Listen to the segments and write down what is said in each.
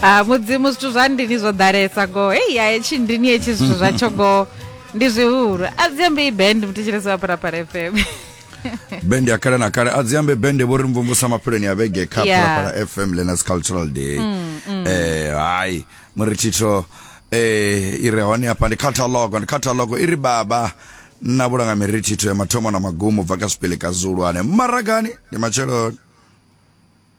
ha mudzimu zwithu zwa ndini zwo ḓalesa go hei ya hetshi ndini hetshi zwithu zwatsho go ndi zwihulu a dzi ambe i band muthetshelesi wa parapara fm bende ya kale na kale a dzi ambe bende vho ri mvumvusa mapheloni ya vhege kha Yeah. parapara fm lenas cultural day eh hayi muri thitho eh i re hone hafha ndi catalog ndi catalog i ri baba na vhulanga miri thitho ya mathomo na magumo bva ka zwipele ka zulu ane maragani ndi matsheloni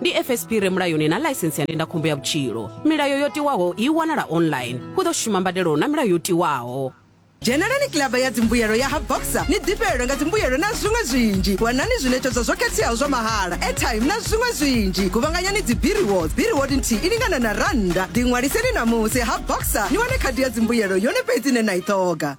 ndi fsp re mulayoni na ḽaisense ya ndindakhombo ya vhutshilo milayo yo tiwaho i wanala online hu ḓo shuma mbadelo na milayo yo tiwaho dzhenelani kilaba ya dzimbuyelo ya ha boxer ni ḓifhelelwe nga dzimbuyelo na zwiṅwe zwinzhi wanani zwiṋetshedzwa zwo khetheaho zwa mahala airtime na zwiṅwe zwinzhi guvhanganyani dzi biriwods biriwod nthihi i lingana na rannda ḓiṅwaliseni ṋamusi ha boxer ni wane khadi ya dzimbuyelo yone fhedzi ine na i ṱhoga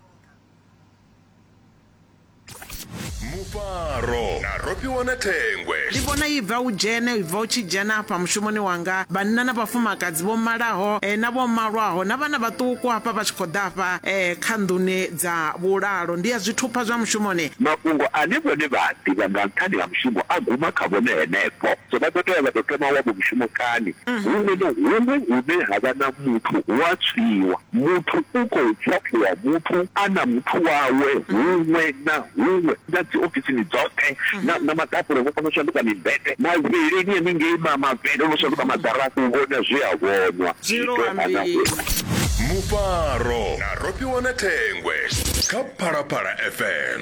mufaro na rofhiwa na thengwe ndi vhona i bva u dzhene i bva u tshi dzhena afha mushumoni wanga vhanna na vhafumakadzi vho malaho eh, na vho malwaho na vhana vhaṱuku hafha vha tshi khou ḓa afha eh, kha nḓuni dza vhulalo ndi ya zwithupha zwa mushumoni mafhungo ane vhone vha a ḓivha nga nṱhani ha mushumo a guma kha vhone henefho so vha ḓo tea vha ḓo thoma wavho mushumo kani huṅwe na huṅwe hune ha vha na muthu hu a tswiwa Muthu u khou phaṱhiwa muthu a na muthu wawe huṅwe na huṅwe, na dziofisini dzoṱhe, na, na maḓakule vho kona u shanduka mimbete, mavhilini henengei ma, mavele no shanduka maḓara, u vhona zwe a vhonwa, zwi tou ana huṅwe. Mufaro na Rofhiwa na Thengwe kha Phalaphala FM.